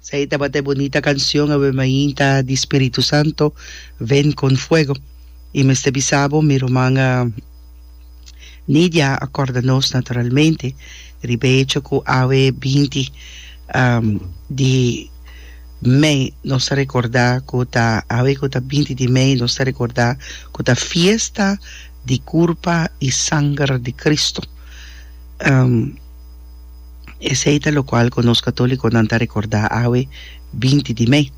Esei tabata e bunita canción awe mainta di Spiritu Santo, Ven con Fuego. I mester bisa bo, mi ruman Nidia a corda nos naturalmente riba e hecho cu awe binti di mei nos ta recorda cu ta, awe cu ta binti di mei nos ta recorda cu ta fiesta di curpa i sanger di Cristo. Esei ta lokual ku nos katolikonan ta rekordá awe binti di mei.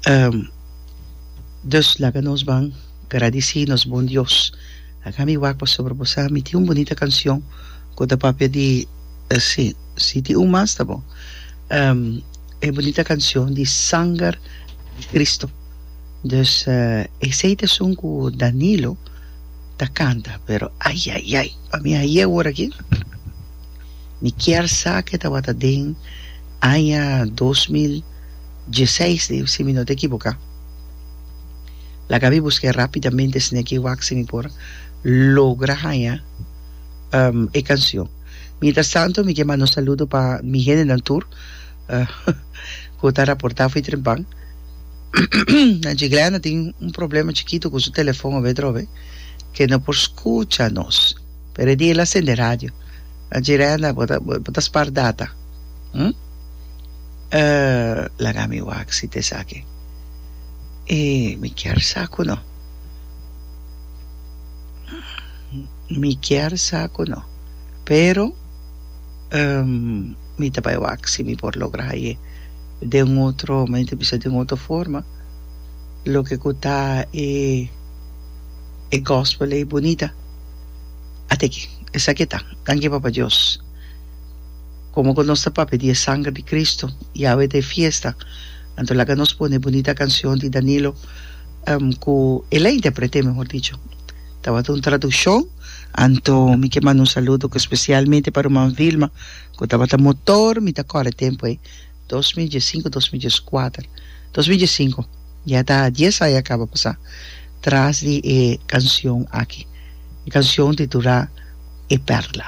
Um, dus laga nos ban gradisí nos bon Dios. Akí mi wak pasobra bo sa mi tin un bunita kanshon ku ta papia di, sí, sí tin un mas ta bon, um, e bunita kanshon di Sanger di Kristu. Dus, esei t'esun ku Danilo. ta canta pero ai ai ai pa mi aye ora aki mi kier sa ke tabata den aña dos mil dieseis di si mi no ta ekiboka laga mi buska e rapidamente sneki wax si mi por logra haña e kansion mientras tanto mi ke manda un saludo pa mi hendenan tur cu ta raporta fo'i Trempan. Angie Glenda tin un problema chiquito cu su telefon obe drobe, que no por scucha nos. Pero e dia el a sende radio. Angie Glenda, bo ta, bo ta spar data. Hm? Uh, laga mi wak si tesaki. E, mi kier sa cu no. Mi kier sa cu no. Pero, Mi ta bai wak si mi por logra aye den otro mente bisa den otro forma loke ku ta e e gospel ei bunita ata aki esaki ta danki Papa Dios komo ku nos ta papia di e sanger di Kristu Yahwe ta e fiesta anto laga nos pone e bunita kansion di Danilo ku elei interpret'e mehor dicho tabata un traduccion. Anto mi ke manda un saludo ku spesialmente pa ruman Vilma ku tabata motor mi ta kòrda tempu ei dos mil dies sinku dos mil dies kuater dos mil dies sinku ya ta dies aña kaba pasá tras di e kansion aki e kansion titulá e perla.